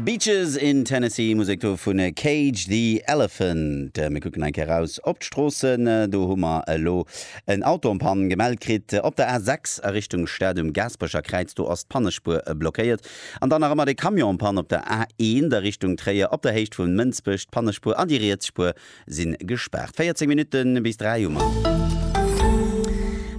Beaches in Tennessee, Musek do vun Cage the Elephant. Mir kucken eng Kéier raus op d'Stroossen. Do hu mer elo en Auto en Panne gemellt kritt op der A6 a Richtung Stad. Um Gaasperecher Kräiz do ass d'Pannespuer blockéiert. An dann nach ëmmer de Camion en Panne op der A1 a Richtung Tréier op der Héicht vu Mënsbech. D'Pannespuer an déi riets Spuer Sinn gespaart. 14 Minutten bis 3 um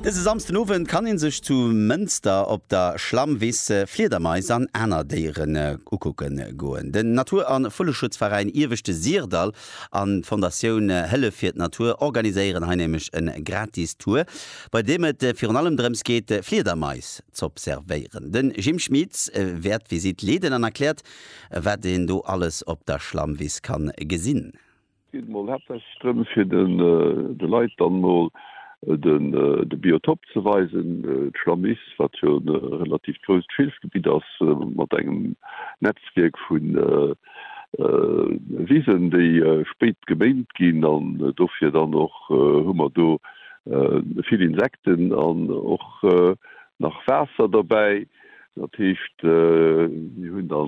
dëse Samsden Owend kann een sech zu Mënster op der Schlammwiss Fliedermais an aner Déieren ukucken goen. Den Natur an Vulleschutzveräin Ieweschte Sirdall an d'Fondatioun Hëllef fir d'Natur organiséieren hei nämlech en gratis Tour bei deem et virun allem drëms geet Fliedermais z'observéieren. Den Jim Schmitz wäert d'Visitt leeden an erkläert wat een do alles op der Schlammwiss kann gesinn. geet mol haaptsächlech drëm fir de Leit dann mol de Biotop ze weisen, d'Schlammiss, wat jo e relativt grousst Schilfgebitt ass, mat engem Netzwierk vu Wisen, déi spéit geméint ginn. An dofir dann och hu mer do vill Insekten an och nach Waasser derbäi. Dat heescht, mir hunn da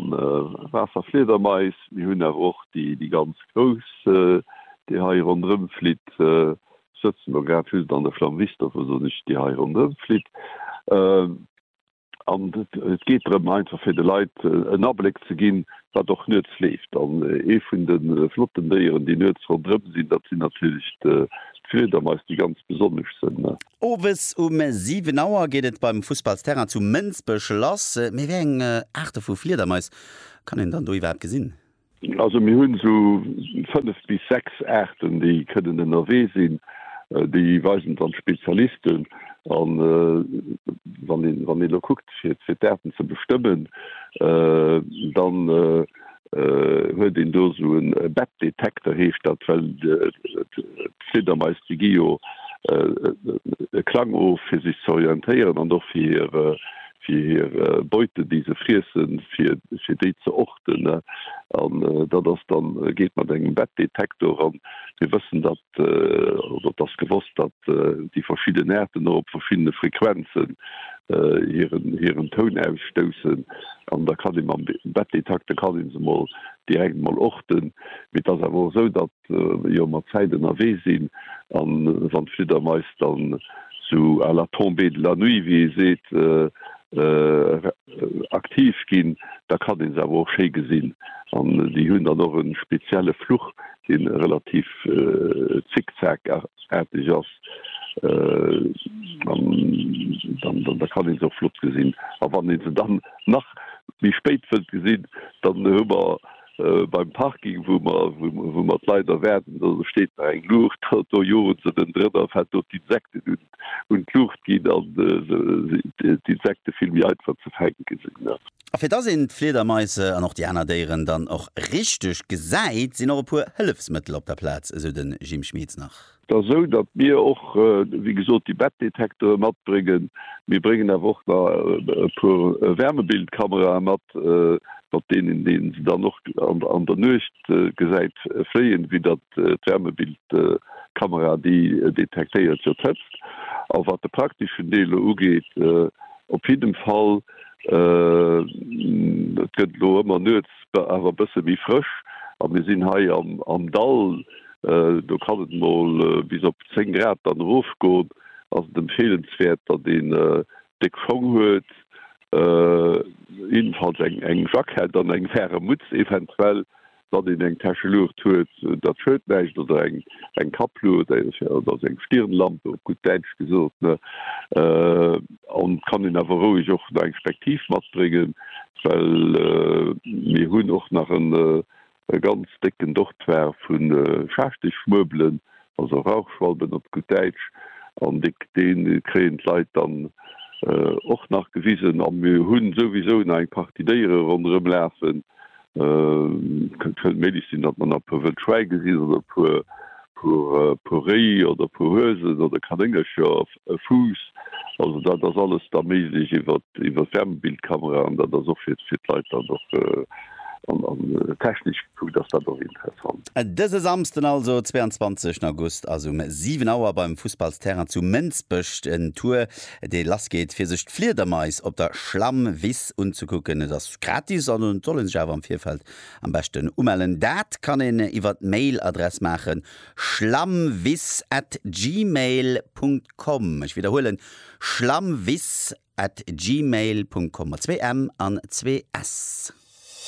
Waasserfliedermais, mir hunn awer och déi ganz grouss, déi hei ronderëm flitt. Ech sëtzen elo grad just an der Flamme viste, dofir soen ech déi hei ronderëm flitt. An et geet drëm einfach fir de Leit en Abléck ze ginn, wat och nuets leeft. An ee vun de flotten Déieren, déi nuets ronderëm sinn, dat sinn natierlech d'Fliedermais, déi ganz besonnesch sinn. Owes um 7 Auer geet et beim Fussballsterrain zu Mënsbech lass. Mee wéi eng Aarte vu Fliedermais kann een dann do iwwerhaapt gesinn? Also mir hunn esou 5 bis 6 Aarten déi kënnen ënnerwee sinn. Déi weisen et dann d'Spezialisten an wann een elo kuckt fir d'Aarten ze bestëmmen dann. huet een do esou e Bettdetekter, heescht dat, well d'Fliedermais déi gi jo e Klang of fir sech ze orientéieren an och fir hir Beute déi se friessen, fir déi ze orten. An dat ass dann, geet mat engem Bettdetektor an mir wëssen dat Et ass gewosst, datt déi verschidden Aarten och op verschiddene Frequenzen hiren Toun ausstoussen. An da kann ee mam Bettdetekter kann ee se mol direkt mol orten. Mee et ass awer och esou, datt jo mer d'Zäit ënnerwee sinn a wann d'Fliddermais dann sou à la tombée de la nuit, wéi ee seet, aktiv ginn, da kann ee se awer och schéi gesinn. An déi hunn dann och e spezielle Fluch, dee relativ zickzack-aarteg ass, an da kann ee se och flott gesinn. A wann ee se dann nach méi spéit wëllt gesinn, dann hu mer beim Parking, wou mer d'Leit erwaarden, do steet nach eng Luucht, do joen se erëndrënner, fänkt do d'Insekten un. un d'Luucht ginn an d'Insekte vill méi einfach ze fänke sinn. A fir dass een d'Fliedermaise an och déi aner Déieren dann och richteg gesäit, sinn och e puer Hëllefsmëttel op der Plaz, esou de Jim Schmieds nach. Et ass esou, datt mir och, wéi gesot, déi Bettdetektore matbréngen. Mir bréngen awer och nach e puer Wärmebildkamera'en mat, mat deenen se dann och an der Nuecht gesäit Fléien, wéi datt d'Wärmebildkamera déi detektéiert, jo d'Hëtzt. A wat de prakteschen Deel elo ugeet, op jiddem Fall, et gëtt elo ëmmer nuets awer e bësse méi frësch a mir sinn hei am Dall, do kann et mol bis op 10 Grad dann erofgoen, ass et empfeelenswäert, datt een déck Schong huet, Jiddefalls eng Jackett an eng faire Mutz, eventuell datt een eng Täsche Luucht huet, datt schued näischt, oder eng Kaplu oder seng Stirnlampe, op gutt Däitsch gesot. An et kann een awer roueg och nach eng Spektiv matbréngen, well mir hunn och nach en e ganz décken Dortoir vu Schaarschtechschmuebelen, also Rauchschwalben op gutt Däitsch, an dee kréien d'Leit dann och nach gewisen. A mir hu souwisou nach eng Partie Déiere ronderëm lafen. Et kënnt vëll méiglech sinn, datt mer nach e puer wëll Schwäi gesinn oder e puer Réi oder e puer Huesen oder Kanéngercher. e Fuuss. Also dat ass alles da méiglech iwwer d'Wärmebildkamera an dat ass och fir d'Leit dann och an technesch gekuckt ass dat och interessant. Dëse Samsden also 22 August ass um 7 Auer beim Fussballsterrain zu Mënsbech den Tour dee lass geet fir sech d'Fliedermais op der Schlammwiss unzekucken. Et ass gratis an et soll ee sech awer am Virfeld am beschten umellen. Dat kann een iwwer d'Mail Adress maachen schlammwiss at gmail punkt com Ech widderhuelen, schlammwiss at gmail punkt com mat zwee m an zwee s.